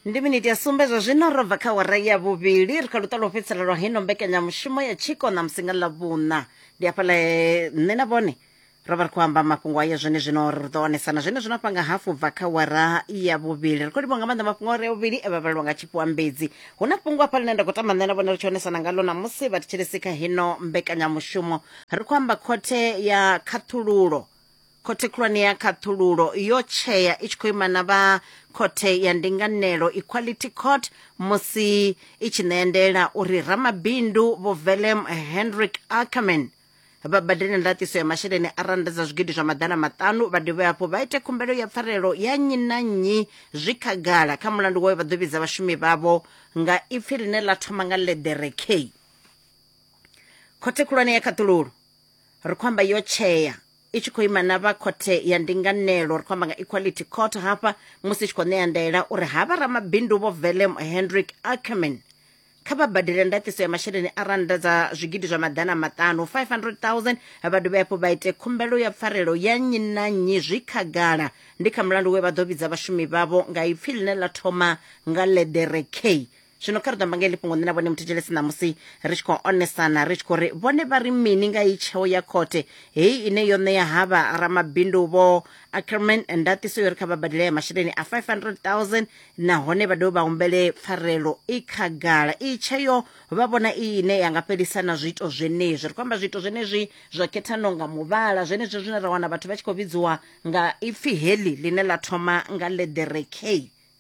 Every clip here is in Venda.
ndi miniti ya sumbe zwa zwino ro bva kha wara ya vhuvhili ri kha luṱa lwo fhedzisela lwa hino mbekanyamushumo ya tshiko na musinga ḽa vhuṋa ndi hafhaḽa eh, nṋe na vhone ro vha ri khou amba mafhungo ayo zwene zwino ri ḓo onesana zwene zwino afha nga hafu bva kha wara ya vhuvhili ri khou livha nga maanḓa mafhungo are vhuvhili e vha vhalelwa nga tshifhiwambedzi hu na fhungo afha ḽine nda khou tamba nṋe na vhone ri tshi onesana ngalo namusi vha thetshelesi kha hino mbekanyamushumo ri khou amba khothe ya khaṱhululo khothe khulwane ya khaṱhululo yo tshea i tshi khou ima na vha khothe ya ndinganelo equality court musi i tshi ṋea ndela uri ramabindu vho velem henrik ackerman vha badele ndaṱiso ya masheleni a rannda dza zwigidi zwa maḓana maṱanu vha dovhe hafhu vha ite khumbelo ya pfarelo ya nnyi na nnyi zwi khagala kha mulandu wayo vha ḓo vhidza vhashumi vhavho nga ipfi ḽine ḽa thoma nga ḽeḓere k khothe khulwane ya khaṱhululo ri khou amba yo tshea i tshi khou ima na vha khothe ya ndinganelo ri khou amba nga equality court hafha musi i tshi khou ṋea ndaela uri ha vha ramabindu vho velem hendrick ackerman kha vha badele ndaṱiso ya masheleni a rannda dza zwigidi zwa maḓana maṱanu 500000 vha dovhe hafhu vha ite khumbelo ya pfarelo ya nnyi na nnyi zwi khagala ndi kha mulandu we vha ḓo vhidza vhashumi vhavho nga ipfi ḽine ḽa thoma nga ḽeḓere k zwino kha ri ḓo amba nga heḽi fhungo nṋe na vhone muthetshelesi ṋamusi ri tshi khou onesana ri tshi khou ri vhone vha ri mini nga iyi tsheo ya khothe heyi ine yo ṋea havha ramabindu vho ackerman ndatiso yo ri kha vha badele ya masheleni a 500000 nahone vha dovhe vha humbele pfarelo i khagala iyi tsheo vha vhona iyi ine ya nga fhelisa na zwiito zwenezwi ri khou amba zwiito zwenezwi zwa khethano nga muvhala zwenezwi zwine ra wana vhathu vha tshi khou vhidziwa nga ipfi heḽi ḽine ḽa thoma nga leḓere k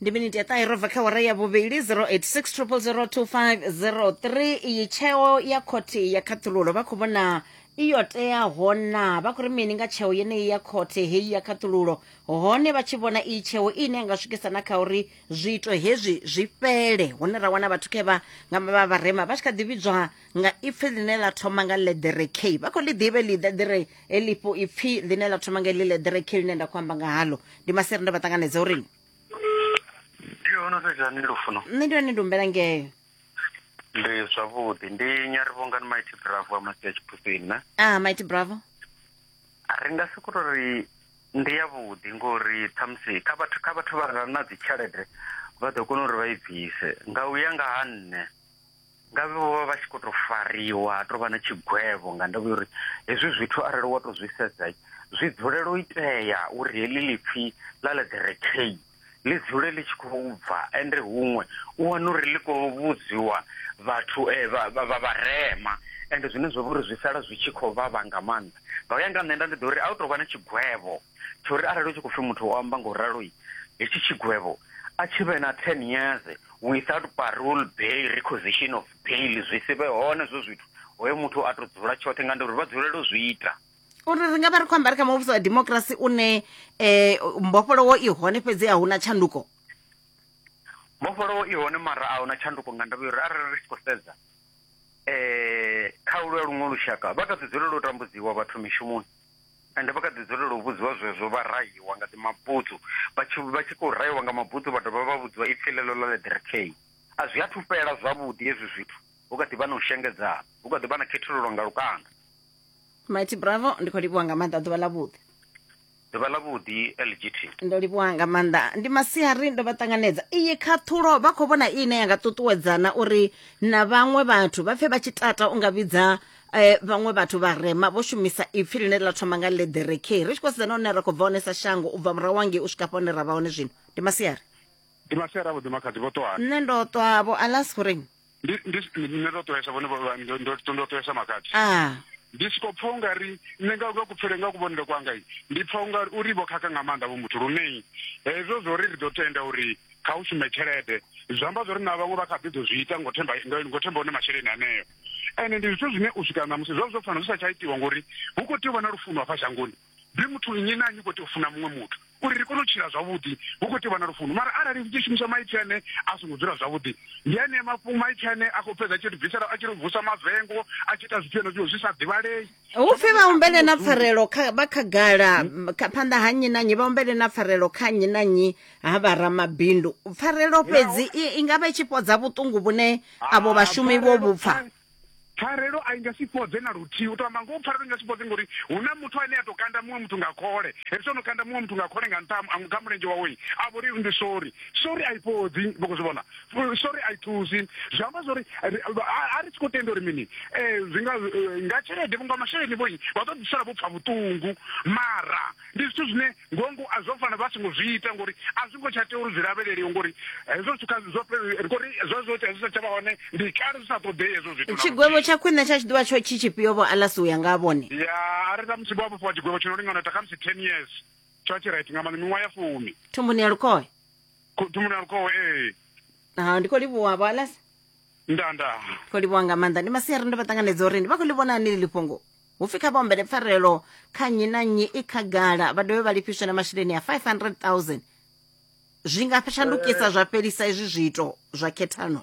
ndi miniti ya ṱahe ro bva kha wara ya vhuvhili 0860002503 iyi tsheo ya khothe ya khaṱhululo vha khou vhona iyo teaho na vha khou ri mini nga tsheo yeneyi ya khothe heyi ya khaṱhululo hone vha tshi vhona iyi tsheo ine nga swikisa na kha uri zwiito hezwi zwi fhele hune ra wana vhathu khe vha nga vha vharema vha tshi kha ḓi vhidzwa nga ipfi ḽine ḽa thoma nga ḽeḓere k vha khou ḽi ḓivhe ḽi ḽeḓere heḽifho ipfi ḽine ḽa thoma nga ḽi ḽeḓere k ḽine nda khou amba nga haḽo ndi masere nda vha ṱanganedza uri nṋe ndi hone ndi humbela ngeo ndi zwavhuḓi ndi nyarivhongani maiti bravo a masi ya tshiphusini na a ah, maiti bravo ri nga si kuto ri ndi yavhuḓi ngori ṱhamusi kha vhathu kha vhathu vha re na dzitshelede vha ḓo kona uri vha i bvise nga u ya nga ha nṋe Ngavhe vho vha vha tshi khou tou fariwa ha tou vha na tshigwevho nga ndavha ya uri hezwi zwithu arali wa tou zwi sedza zwi dzulela u itea uri heḽi lipfhi ḽa ḽa the recay ḽi dzule ḽi tshi khou bva ende huṅwe u wana uri ḽi khou vhudziwa vhathu eh, vha vha vharema ende zwine zwa vha uri zwi sala zwi tshi khou vhavha nga maanḓa nga u ya nga nṋe nda ndi ḓo uri a u tou vha na tshigwevho tsho uri arali u tshi khou pfhi muthu o amba nga u ralo hetshi tshigwevho a tshi vhe na 10 years without parole bail requisition of bail zwi si vhe hone zwo zwithu hoyo muthu a tou dzula tshoṱhe nga nduri vha dzulele u zwi ita uri ri nga vha ri khou ambari kha muvhuso wa democracy une um mbofholowo i hone fhedzi a huna tshanduko mbofholowo i hone mara a huna tshanduko nga ndavha uri arali ri tshi khou sedza um kha ulwa luṅwe lushaka vha tou ḓi dzulela u tambudziwa vhathu mishumoni Ende vha kha ḓi dzulela u vhudziwa zwezwo vha rahiwa nga ḓi mabutsu. Vha tshi vha tshi khou rahiwa nga mabutsu vha dovha vha vhudziwa ipfi ḽeḽo ḽa Ledrekei. A zwi athu fhela zwavhuḓi hezwi zwithu, hu kha ḓi vha na u shengedzana, hu kha ḓi vha na khethululo nga lukanda. Mighty Bravo, ndi khou livhuwa nga maanḓa ḓuvha ḽa vhuḓi. Ḓuvha ḽa vhuḓi LGT. Ndo livhuwa nga maanḓa ndi masiari ndo vha ṱanganedza iyi khaṱhulo vha khou vhona ine ya nga ṱuṱuwedzana uri na vhaṅwe vhathu vha pfe vha tshi tata u nga vhidza eh, vhaṅwe vhathu vharema vho shumisa ipfi ḽine ḽa thoma nga lederekei ri tshi khou sedzana hune ra khou bva hone sa shango u bva murahu wangei u swika hafha hune ra vha hone zwino ndi masiari ndi masiari avhuḓi makhadzi vho ṱwani nṋe ndo ṱwavho alas goreng nṋe ndo ṱwesa vhone ndo ṱwesa makhadzi ah. ndi siko pfa ungari nṋe nga nga kupfele nga kuvhonele kwanga ndi pfa ungari uri vho khakha nga maanḓa vho muthu lunei hezwo zwo ri ri ḓo tenda uri kha u shume tshelede zwi amba zwo ri na vhaṅwe vha kha ḓi ḓo zwi ita ngo themba ngo themba hone masheleni aneo ende ndi zwithu zwine u swika ṋamusi zwo zwo fanela zwi sa tsha itiwa ngori hu khou tea u vha na lufuno hafha shangoni ndi muthu nnyi na nnyi khou tea u funa muṅwe muthu uri ri kone u tshila zwavhuḓi hu khou tea u vha na lufuno mara arali ri tshi shumisa maipfi ane a songo dzula zwavhuḓi ndi ane mafhungo maipfi ane a khou fhedza a tshi ri bvisela a tshi ri vusa mavengo a tshi ita zwithu henezwo zwi sa ḓivhalei upfi vha humbele na pfarelo vha khagala phanḓa ha nnyi na nnyi vha humbele na pfarelo kha nnyi na nnyi ha vha ramabindu pfarelo fhedzi i nga vha i tshi fhodza vhuṱungu vhune avho vhashumi vho vhupfa pfarelo a i nga si fhodze na luthihi u to amba ngoho pfarelo i nga si fhodze ngori hu na muthu ane a to kanda muṅwe muthu nga khole hezwi o no kanda muṅwe muthu nga khole nga nṱha kha mulenzhe wawe a vho ri ndi sori sori a i fhodzi vho zwi vhona sorry a i thusi zwi amba zwori a ri tshi khou tenda uri mini um zwi nga eh, nga tshelede vhunga masheleni vhoi vha ḓo ḓisala vho pfa vhuṱungu mara ndi zwithu zwine ngongo a zwo fanela vha songo zwi ita ngori a zwi ngo tsha tea uri zwi lavheleliwe ngori hezwo zwithu kha zwo ngori zwo zwo tea zwi sa tsha vha hone ndi kale zwi sa ṱoḓei hezwo zwithu tshigwevho tsha khwine tsha tshi ḓivha tsho tshi tshifhio vho alasi u ya nga vhone ya a ri ṱamusi vho vhofhiwa tshigwevho tshi no lingana ta khamusi ten years tsho tshi right nga maanḓa miṅwaha ya fumi thumbuni ya lukhohe Ku- thumuni a lukhowe ee ha ndi khou livhuwa vho alas nda nda khou livhuwa nga maanḓa ndi masiari ndo vha ṱanganedza uri ndi vha khou ḽi vhona ni ḽi fhungo hu pfi kha vhaombele pfarelo kha nnyi na nnyi i khagala vha dovhe vha lifhiswe na masheleni a 500000 zwi nga shandukisa zwa fhelisa izwi zwiito zwa khethano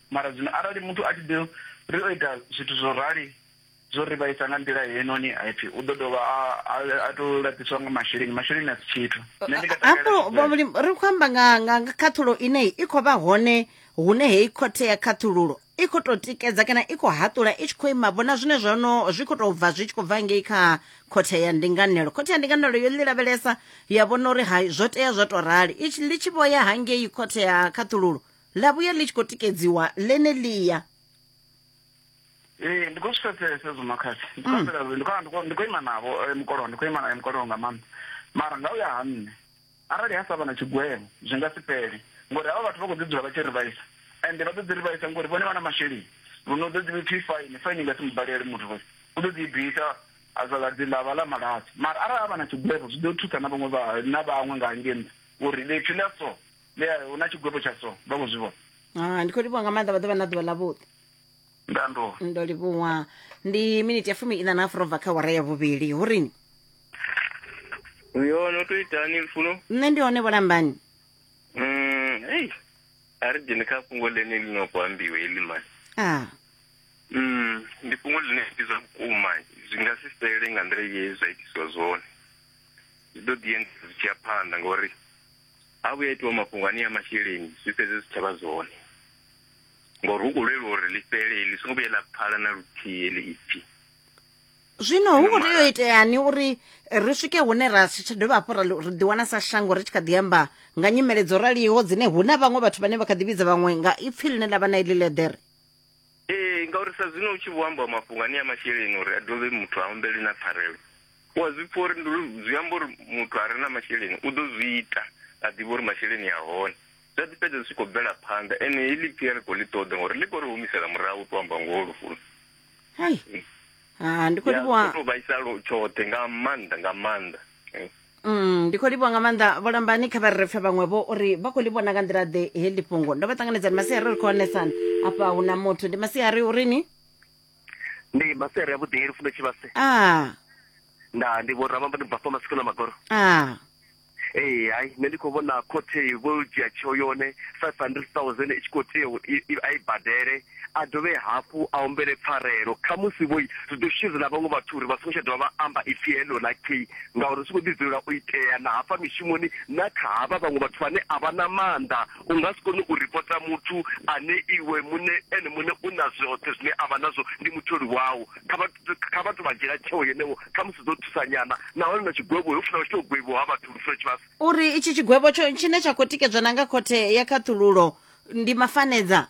Mara zwino arali muthu a tshi ḓo ri o ita zwithu zwo rali zwo ri vhaisa nga nḓila heinoni, ha pfi u ḓo dovha a, a, a to laṱiswa nga masheleni. Masheleni a si tshithu. Nṋe ndi nga takalela hafho tshigwevho. vhavhulimi ri khou amba nga nga nga khaṱhulo ine i khou vha hone hune heyi khothe ya khaṱhululo i khou tou tikedza kana i khou haṱula i tshi khou ima vhona zwine zwa no zwi khou tou bva zwi tshi khou bva ngei kha khothe ya ndinganelo khothe ya ndinganelo yo ḽi lavhelesa ya vhona uri hai zwo tea zwo tou rali i tshi ḽi tshi vho ya hangei khothe ya khaṱhululo ḽa vhuya ḽi tshi khou tikedziwa ḽeneḽia ee ndi khou zwi pfesesa hezwo makhadzi ndi khou mm. ambela ndi khou ndi khou ima navho eh, mukolowa ndi khou ima naye mukolowa nga maanḓa mara nga u ya ha nṋe arali ha sa vha na tshigwevho zwi nga si fhele ngori havha vhathu vha khou ḓi dzula vha tshi ri vhaisa ende vha ḓo ḓi ri vhaisa ngori vhone vha na masheleni luno ḓo ḓi pfi faini faini nga si mubalele muthu vhoi u ḓo ḓi bvisa azaladzi ḽa vha ḽa malazi mara arali a vha na tshigwevho zwi ḓo thusa na vhaṅwe na vhaṅwe nga hangei nṱha uri ḽipfi ḽa so Yeah, hu na tshigwevho tsha so vha khou zwi vhona Ah, ndi khou livhuwa nga maanḓa vha ḓo vha na ḓuvha ḽavhuḓi ndanduwa ndo livhuwa ndi miniti ya fumi ina na afro bva kha wara ya vhuvhili hu rini uyo no to itani lufuno nṋe ndi hone vholambani Mm, ei a ri dzhene kha fhungo ḽene ḽi no khou ambiwa heḽi mani ah Mm, ndi fhungo ḽine ndi zwa vhukuma zwi nga si fhele nga nḓila ye zwa itiswa zwone zwi ḓo ḓi enda zwi tshi ya phanḓa ngauri ha vhuya itiwa mafhungo ane ya masheleni zwi fhedze zwi tshavha zwone ngori hu khou lwelwa uri ḽi fhele ḽi songo vhuye ḽa pfala na luthihi ḽi ipfi zwino hu khou tea u iteani uri ri swike hune ra si tsha dovha hafhu ri ḓiwana sa shango ri tshi kha ḓi amba nga nyimele dzo raliho dzine hu na vhaṅwe vhathu vhane vha kha ḓi vhidza vhaṅwe nga ipfi ḽine ḽa vha na iḽi ḽeḓere ee ngauri sa zwino u tshi vho ambiwa mafhungo ane ya masheleni uri a dovhe muthu a humbele na pfarelo u a zwi pfha uri ndi uri zwi amba uri muthu a re na masheleni u ḓo zwi ita a ḓivha uri masheleni a hone zwa ḓi fhedza zwi tshi khou bvela phanḓa ene heḽi pfhi a ri khou ḽi ṱoḓa ngori ḽi khou ri humisela murahu u tou amba ngoho lufuni hai ha ndi khou Ya, livhuwa zwo tou vhaisalo tshoṱhe nga maanḓa nga maanḓa Eh. Mm, ndi khou livhuwa nga maanḓa vholambani kha vha re pfe vhaṅwe vho uri vha khou livhuwa na nga nḓila ḓe heḽi fhungo ndo vha ṱanganedzani masiari ri khou onesana afha hu na muthu ndi masiari uri ni ndi masere ya vhuḓi lufundo tshivhase a nda ndi vho ramamba ndi bvafha masiku na magoro a ee hai nṋe ndi khou vhona khothe vho dzhia tsheo yone five hundred thousand i tshi khou tea u- i- i- a i badele a dovhe hafhu a humbele pfarelo. Khamusi vho zwi ḓo shushedza na vhaṅwe vhathu uri vha songo tsha dovha vha amba ipfi heḽo ḽa gay ngauri zwi tshi khou ḓi dzulela u itea na hafha mishumoni na kha havha vhaṅwe vhathu vhane a vha na maanḓa. U nga si kone u ripota muthu ane iwe muṋe ene muṋe u na zwoṱhe zwine a vha nazwo, ndi mutholi wau. Kha vha kha vha tou vha dzhiela tsheo yeneyo, khamusi zwi ḓo thusa nyana. Nahone na tshigwevho ho funa hu tshi tou gwevhiwa ha vhathu lufuno tshivhasa. U ri itshi tshigwevho tsho tshine tsha khou tikedzwa na nga Khothe ya Khaṱhululo ndi mafanedza.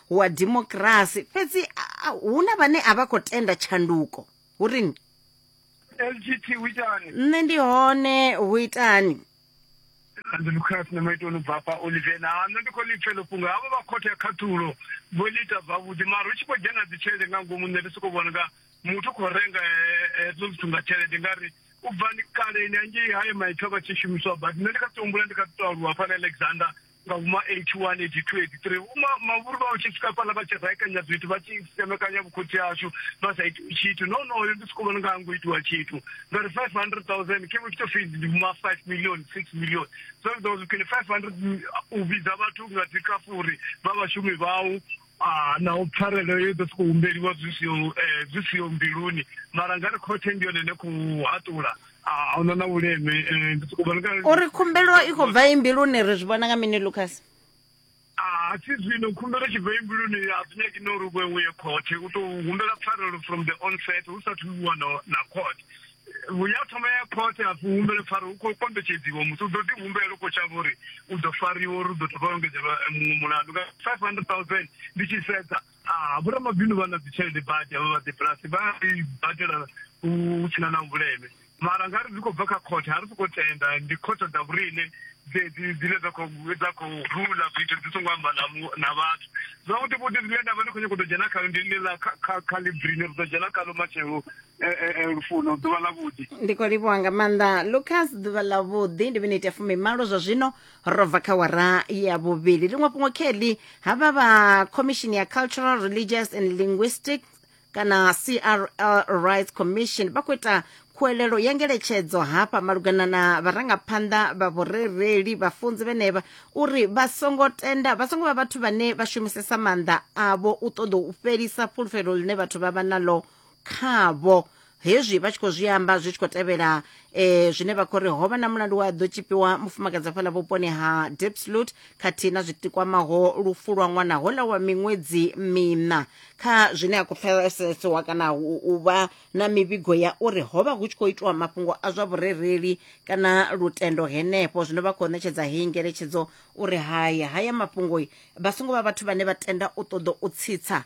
wa dimokirasi fhedzi hu na vhane a vha khou tenda tshanduko hu rini lgt hu itani nṋe ndi hone hu itani democrats na maitoni bva fha olivena ha nṋe ndi khou lipfelo fhungo havho vha khothe ya khathulo vho ḽi ita zwavhuḓi mara hu tshi khou dzhena dzi tshelede nga ngomu nṋe ndi sokou vhona nga muthu u khou renga hezwo zwithu nga tshelede nga ri u bva ni kaleni angei haye maipfi a vha tshi shumiswa but nṋe ndi kha ṱuhumbula ndi kha ṱuṱo aluwa fhana alexander nga vhuma 81 82 83 vhuma mavhuru vha tshi swika fhala vha tshi raekanya zwithu vha tshi semekanya vhukhotsi hashu vha sa iti tshithu no no yo ndi soko vhona nga ngo itiwa tshithu nga ri 500000 ke vhutshito fees ndi vhuma 5 million 6 million so ndo zwi kene 500 u vhidza vhathu nga dzi kafuri vha vhashumi vhau Ah, naho pfarelo yo ḓo sokou humbeliwa zwi siho eh, zwi siho mbiluni mara nga ri khothe ndi yone ine khou haṱula ah, ahuna na vhuleme eh, ndi sokou vhona kana- uri khumbelo i khou bva imbiluni ri zwi vhona nga mini lucas Ah, si zwino khumbelo tshi bva imbiluni a zwi nyaki no uri vhe uye khothe u tou humbela pfarelo from the onset hu sathu iwa na na court ya thoma ya khothe a humbele pfara hu khou kombetshedziwa muthu u ḓo ḓi humbela u khou tshavha uri u ḓo fariwa uri u ḓo thoma engedzelwa eh, muṅwe mulandu nga five hundred thousand ndi tshi sedza ah, vhoramabindu vha na dzitshelede badi avha vha debulasi vha i badela hu sina na vhuleme mara nga ri zwi khou bva kha khothe ha ri sokou tenda ndi khothe dza vhurine dzine dza khou rula zwithu dzi songo amba na vhathu zwavhuḓi vhuḓi zwine nda vha ndi khou nyako ḓo dzhena khayo ndi ḽi ḽa kha ḽi brine ri ḓo dzhena khaḽo matshelo eh, eh, eh, lufuno ḓuvha ḽa vhuḓi ndi khou livhuwa nga maanḓa lucas ḓuvha ḽa vhuḓi ndi miniti ya fumimalo zwa zwino ro bva kha wara ya vhuvhili liṅwe fhungo kelly havha vha commission ya cultural religious and linguistic kana crl rights commission vha khou ita khuwelelo ya ngeletshedzo hafha malugana na vharangaphanḓa vha vhurereli vhafunzi vhenevha uri vha songo tenda vha songo vha vhathu vhane vha shumisesa maanḓa avho u ṱoḓa u fhelisa fhulufhelo ḽine vhathu vha vha nalo khavho hezwi vha tshi khou zwi amba zwi tshi khou tevhela eh, zwine vha khou ri ho vha na mulandu wa ḓo tshipiwa mufumakadzi afhaḽa vhuponi ha depslut khathihi na zwitikwamaho lufu lwa ṅwana hola wa miṅwedzi mina kha zwine a khou pfesesiwa kana u u vha na mivhigo ya uri ho vha hu tshi khou itiwa mafhungo a zwa vhurereli kana lutendo henefho zwino vha khou ṋetshedza heyi ngeletshedzo uri haya haya mafhungo vha songo vha vhathu vhane vha tenda u ṱoḓa u tsitsa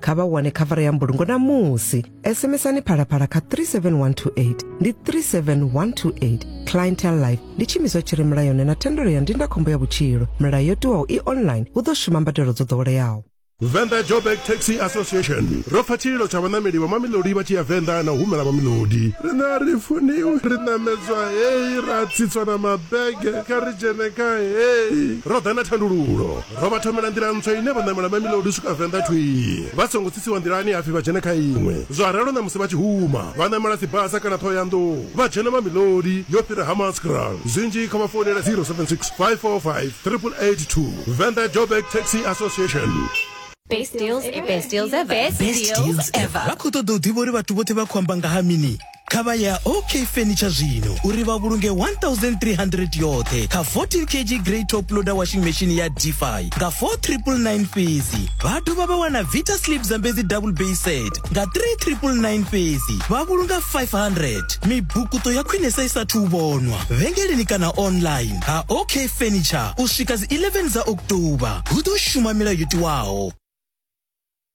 kha vha wane khavara ya mbulungo namusi sms-ani phalaphala kha 37128 ndi 37128 clientel life ndi tshiimiswa tshi re mulayoni na thendelo ya ndindakhombo ya vhutshilo milayo yo tiwaho i online hu ḓo shuma mbadelo dzo ḓoweleaho Venda Joburg Taxi Association ro pfa tshililo tsha vhanameli vha mamilodi vha tshi ya Venda na u humela mamilodi rine a ri funiwi ri namedzwa heyi ra tsitswa na mabege kha ri dzhene kha heyi ro ḓa na thandululo Ro vha thomela nḓila ntswa ine vha ṋamela Mamelodi u swika Venḓa thwii vha songo tsitsiwa nḓilani hapfi vha dzhene kha iṅwe. Zwa ralo ṋamusi vha tshi huma vha ṋamela Tsibasa kana Ṱhohoyanḓou vha dzhena Mamelodi yo fhira Hammanskraal. Zwinzhi kha vha founele 0765458882. Venḓa Joburg Taxi Association. Best deals ever. Best deals ever. Best deals ever. Vha khou ṱoḓa u ḓivha uri vhathu vhoṱhe vha khou amba nga ha mini? kha vha ya ok furniture zwino uri vha vhulunge 1300 yoṱhe kha 14 kg grey top loader washing machine ya defi nga 4999 fhedzi vha dovha vha wana vita slip zambedzi double bay set nga 3999 fhedzi vha vhulunga 500 mibukuto ya khwinesa i sathu vhonwa vhengeleni kana online ha ok furniture u swika dzi 11 dza oktoba hu ḓo shuma milayo yo tiwaho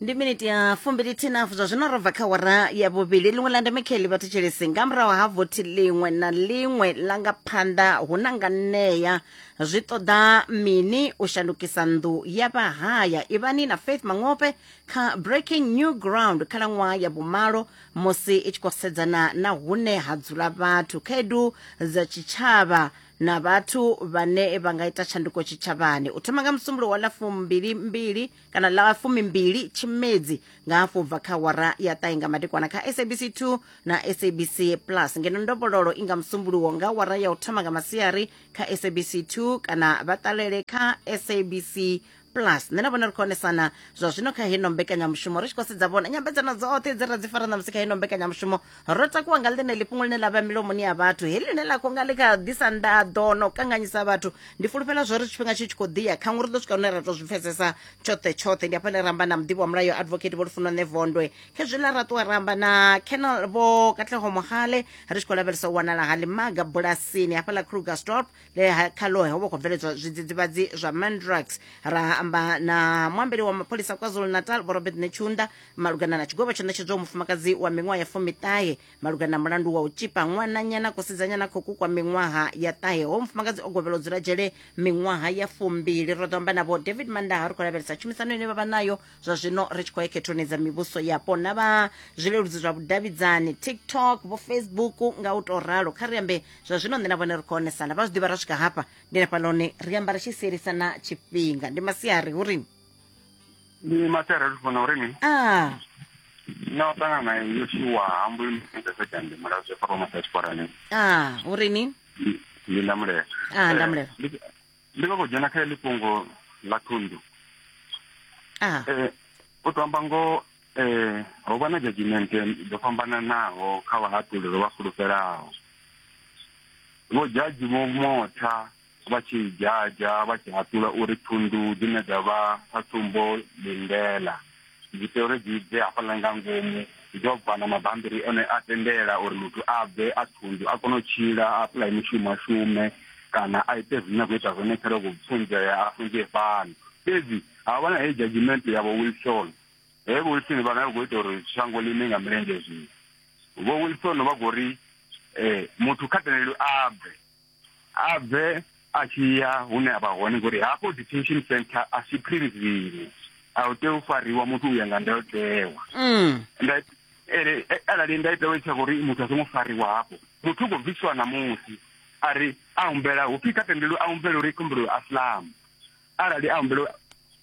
ndi miniti ya fumbilithinafu zwa zwino ro bva kha wara ya vhuvhili ḽiṅwe ḽa ndeme kheli vha thetshelesi nga murahu ha vothi ḽiṅwe na ḽiṅwe ḽa nga phanḓa hu na nga ṋea zwi ṱoḓa mini u shandukisa nnḓu ya vhahaya ivhani na faith mangope kha breaking new ground khalaṅwaha ya vhumalo musi i tshi khou sedzana na hune ha dzula vhathu khaedu dza tshitshavha na vhathu vhane vha nga ita tshanduko tshitshavhani u thoma nga musumbulo wa ḽa fumbili mbili kana ḽa fumimbili tshimedzi nga hafhu u bva kha wara ya ṱahe nga madekwana kha sabc 2 na sabc plus ngeno ndovhololo i nga musumbuluwo nga wara ya u thoma nga masiari kha sabc 2 kana vha ṱalele kha sabc plus nṋe na vhona ri khou onesana zwa zwino kha heno mbekanyamushumo ri tshi khou sedza vhona nyambedzano dzoṱhe dze ra dzi fara ṋamusi kha heno mbekanyamushumo ro takuwa nga ḽeneli fhungo ḽine ḽa vha milomoni ya vhathu heḽi ḽine ḽa khou nga ḽi kha ḓisa ndaḓo no kanganyisa vhathu ndi fulufhela zwo ri tshifhinga tshi tshi khou ḓiya khaṅwe ri ḓo swika hune ra tou zwi pfesesa tshoṱhe tshoṱhe ndi afha ḽe ramba na muḓivhi wa mulayo advocate vho lufuno nṋe vondwe khezwiḽa ra ṱuwa ramba na kenal vho katlego mohale ri tshi khou lavhelesa u wanala ha ḽimaga bulasini hafha ḽa krugerstorp le kha lohe ho vha khou bveledzwa zwidzidzivhadzi zwa mandrax ra amba na muambeli wa mapholisa kwazulu natal vho robert nechunda malugana na tshigwevho tsho ṋetshedzwaho mufumakadzi wa miṅwaha ya fumiṱahe malugana na mulandu wa u tshipa ṅwananyana kusidzanyana kho kukwa miṅwaha ya ṱahe ho mufumakadzi o gwevhela u dzula dzhele miṅwaha ya fumbili ro ḓo amba navho david mandaha ri khou lavhelesa tshumisano ine vha vha nayo zwa zwino ri tshi khou ya khethoni dza mivhuso yapo na vha zwileludzi zwa vhudavhidzani tiktok vho facebook nga u tou ralo kha ri ambe zwa zwino nṋe na vhone ri khou onesana vha zwi ḓivha ra swika hafha ndi na fhaloni ri amba ri tshi sielisana tshifhinga ndi masiari hu ri ni matera ri funa uri ni a na u ṱangana nayo yo tshiwa hambo imueesekande mulayo zwe fara masa tshiporani a uri ni ndi ndamulela Ah, ndamulela. Eh, ndi- ndi khou dzhena kha heḽi fhungo ḽa thundu a Eh, u to amba ngoho eh, ho vha na judgment dzo fhambananaho kha vhahaṱuli ro vha fulufhelaho vho jaji vho motha vha tshi dzhadzha vha tshi haṱula uri thundu dzine dza vha sa tsumbo lindela dzi tea uri dzi bve hafhaḽa nga ngomu dzo bva na mabambiri one a tendela uri muthu a bve a thundu a kone u tshila a apply mushumo a shume kana a ite zwine a khou ita zwone kha loko funzea a funzee fhano fhedzi ha vha na heyi judgement ya vho wilson he vho wilson vha na khou ita uri shango ḽine nga milenzhe zwino vho wilson vha khou ri um muthu kha tendelwe a bve a bve a tshi ya hune a vha hone ngori hafho detention center a si prison a u tea u fariwa muthu u ya nga ndayotewa mm. ere eh, arali nda ita wetsa uri muthu a songo fariwa hapo muthu go bviswa na musi ari a humbela hu pika tendelo a humbela uri kumbelo aslam arali a humbela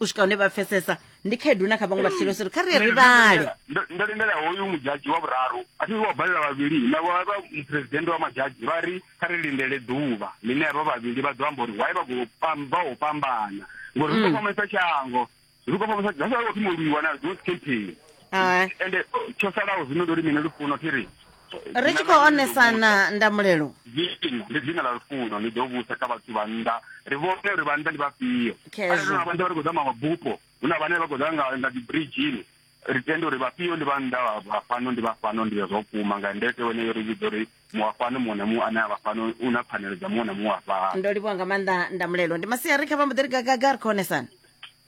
u swika hune vha pfesesa ndi khaedu na kha vhaṅwe vhatshilo siri kha ri ye ri vhale ndo lindela hoyu mudzhadzhi wa vhuraru a thi wa balela vhavhili na vha muphuresidennde wa madzhadzhi vha ri kha ri lindele ḓuvha ḽine havha vhavhili vha ḓo amba uri why vha khou pamba ho fhambana ngori ri khou fhambanyisa shango ri khou fhambanyisa that's why wo thoma u lwiwa na those campaign ende tsho salaho zwino ndi uri mini lufuno thi ri ri tshi khou onesana ndamulelo zwiini ndi dzina ḽa lufuno ni ḓo vhusa kha vhathu vha nnḓa ri vhone uri vha nnḓa ndi vhafhio arali na vha nnḓa vha ri khou ḓa mabupo hu na vhane vha khou ḓa nga nga dzibridgini ri tende uri vhafhio ndi vha nnḓa vha fhano ndi vha fhano ndi zwo kuma nga ndete wene yo ri vhidza uri muwa fhano muṅwe na muṅwe ane a vha fhano u na pfanelo dza muṅwe na muṅwe a fhano ndo livhuwa nga maanḓa ndamulelo ndi masiari kha vha mbo ḓi ri gagaga ri khou onesana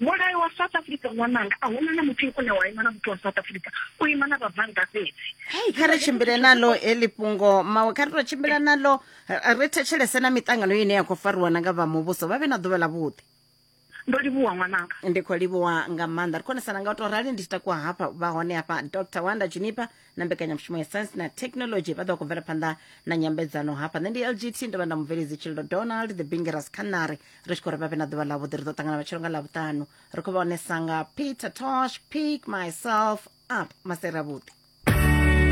mulayo wa south africa ṅwananga a huna na muthu une wa ima na muthu wa south africa u ima na vhabvannḓa fhedzi hei kha ri tshimbile nalo heḽi fhungo mawe kha ri to tshimbila nalo ri thetshelese na miṱangano ine ya khou fariwa na nga vha muvhuso vha vhe na ḓuvha ḽa vhuḓi ndo livhuwa ṅwananga ndi khou livhuwa nga maanḓa ri khonesana nga u to rali ndi tshi takuwa hafha vha hone hafha dr wanda junipa na mbekanyamushumo ya science na technology vha ḓo khou bvela phanḓa na nyambedzano hafha nṋe ndi lgt ndo vha nda mubveledzi tshililo donald the bingeras canary ri tshi khou ri vha vhe na ḓuvha ḽavhuḓi ri ḓo ṱangana matshelo nga ḽavhuṱanu ri khou vha onesa nga peter tosh pick myself up maseravhuḓi